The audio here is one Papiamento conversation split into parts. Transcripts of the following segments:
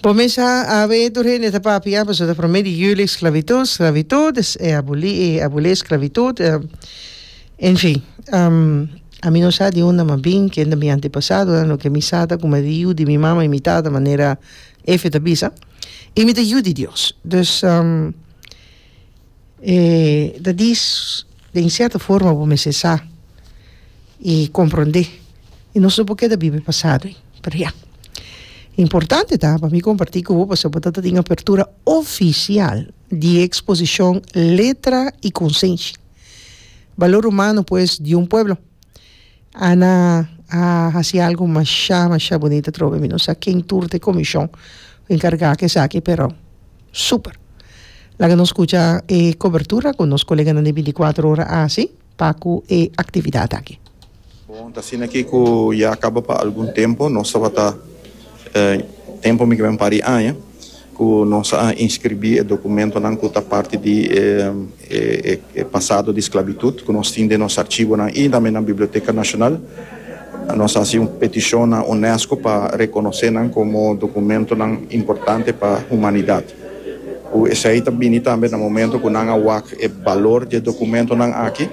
Bo mesa a we tur hende ta papia pasobra ta prome di juli esclavitud sclavitud es e aboli e aboli esclavitud en fin a mi no sa di unda mi a bin kende mi antepasadonan loke mi sa ta ku mi a di yu di mi mama y mi tata manera efe ta bisa y mi ta yu di Dios dus. E ta dis, Den sierto forma bo mester sa i komprondé, i nos no por keda biba e pasado ei. Pero ya, importante ta pa mi kompartí ku bo pasobra bo ta ta tin apertura ofisial di e eksposishon Letra y conciencia, Balor humano pues di un pueblo. Ana a hasi algu masha masha bunito atrobe mi no sa ken tur ta e komishon ku enkargá ku esaki pero super laga nos skucha e kobertura ku nos koleganan di e binti kuater ora a hasi pa ku e aktividat aki. Bon ta asina ki ku ya kaba pa algun tempu nos tabata tempu mi kiba un par di aña. ku nos a inskribí e dokumentonan ku ta parti di e pasado di sklabitut ku nos tin den nos archibonan i tambe na Biblioteka Nashonal. Nos a hasi un petishon na UNESCO pa rekonosé nan komo dokumentonan importante pa humanidat. Ku esei ta bini tambe na momento ku nan a wak e balor di e dokumentonan aki,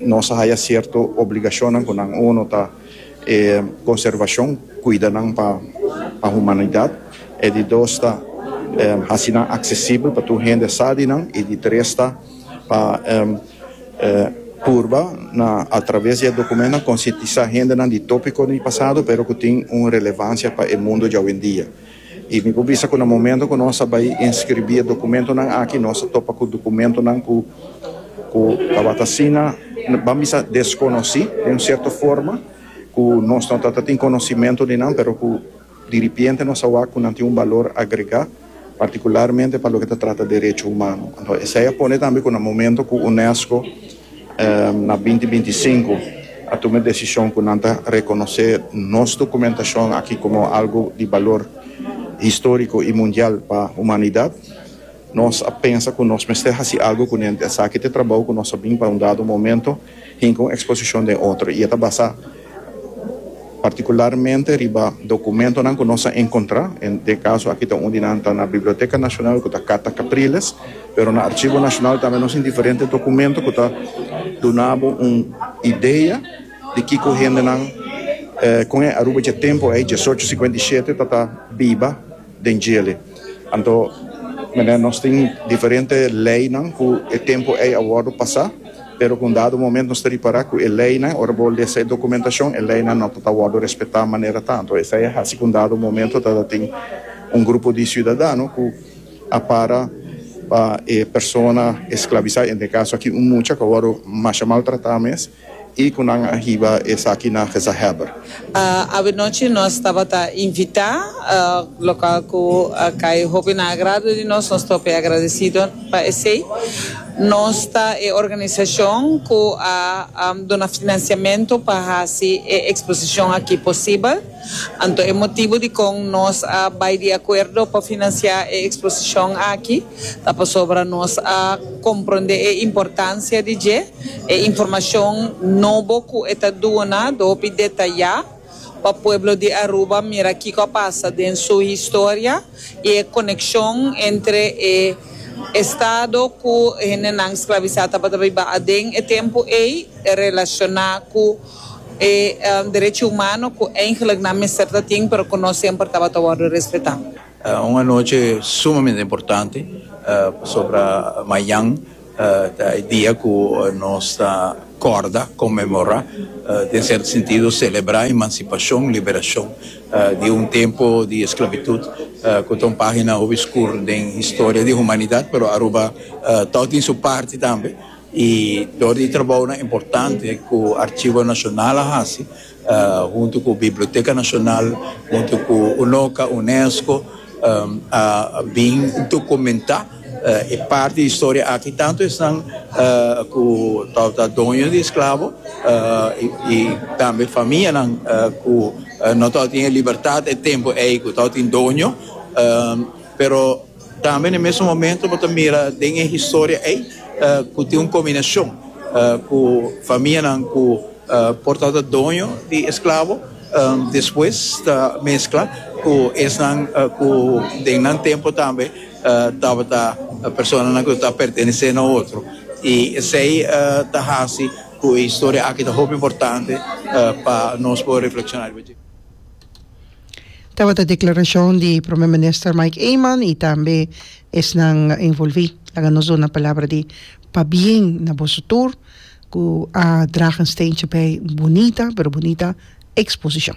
nos a haya sierto obligashonnan ku nan. Uno ta. E konservashon kuida nan pa pa humanidat. E di dos ta hasi nan aksesibel pa tur hende sa di nan i di tres ta pa purba na atraves di e dokumentnan konsientisá hendenan di tópikonan di pasado pero ku tin un relevansia pa e mundu djawendia. I mi por bisa ku na momento ku nos a bai inskribí e dokumentunan aki nos a topa ku dokumentunan ku ku tabata asina ban bisa deskonosí den un sierto forma ku nos no ta ta tin konosimentu di nan pero ku diripiente nos a wak ku nan tin un balor agregá partikularmente pa loke ta trata derecho humano. Esei a pone tambe ku na momento ku UNESCO Na binti binti sinku a tuma e desishon ku nan ta rekonosé nos dokumentashon aki komo algu di balor historiko i mundial pa humanidat. Nos a pensa ku nos mester hasi algu kunenti. Esaki ta e trabou ku nos a bin pa un dado momento hinka un eksposishon den otro i e ta basá. Particularmente riba documentonan cu nos a encontra, en e caso aki ta un di nan ta na Biblioteca Nacional cu ta Carta Capriles, pero na Archivo Nacional tambe nos tin diferente documento cu ta duna bo un idea di kico hendenan con e Aruba dje tempo ey, diesocho cincuenta y siete, ta ta biba. den djele. Anto mene nos tin diferente leynan cu e tempo ey a wordo pasa, pero cu un dado momento nos ta ripara cu e leynan, ora bo lesa e documentacion, e leynan no ta ta wordo respeta manera ta. Anto esey a haci cu un dado momento ta ta tin un grupo di ciudadano cu a para pa e persona esclavisa, en e caso aki un mucha cu a wordo masha maltrata mes. I ku nan a hiba esaki na gezagheber. Avenochi nos tabata invitá, lokal ku a kai hopi na agrado di nos. Nos ta hopi agradesido pa esei. Nos ta e organisashon ku a duna finansiamentu pa hasi e eksposishon aki posibel. Anto e motibu dikon nos a bai di akuerdo pa finansiá e eksposishon aki. Ta pasobra nos a comprende e importancia di dje, e informacion nobo cu e ta duna do hopi detayá pa pueblo di Aruba mira kico a pasa den su historia y e coneccion entre e Estado cu hendenan sclavisa tabata biba aden e tempo ey relaciona cu e derechi humano cu eigenlijk nan mester ta tin pero cu no semper tabata wordo respeta. Un anochi sumamente importante pasobra mañan ta e dia ku nos ta kòrda, konmemorá, den sierto sentido selebrá emansipashon, liberashon di un tempu di esklabitut ku ta un página hopi skur den historia di humanidat, pero Aruba tòg tin su parti tambe i dor di trabounan importante ku Archivo Nacional a hasi, huntu ku Biblioteka Nashonal, huntu ku UNOCA, UNESCO, a bin dokumentá e parti di historia aki, tantu esnan ku tabata ta doño di esklabo i tambe famianan ku no tabata tin e libertat e tempu ei ku tabata tin doño, pero. Tambe na e mesun momento bo ta mira den e historia ei ku tin un kombinashon ku famianan ku por tabata doño di esklabo despues ta meskla ku esnan ku den nan tempu tambe tabata personanan ku ta pertenesé na otro i esei ta hasi ku e historia aki ta hopi importante pa nos por reflekshoná riba dje. Tabata declaracion di Prome Minister Mike Eman y tambe esnan envolvi laga nos duna palabra di pabien na boso tur cu a dragen steentje bay bonita pero bonita exposicion.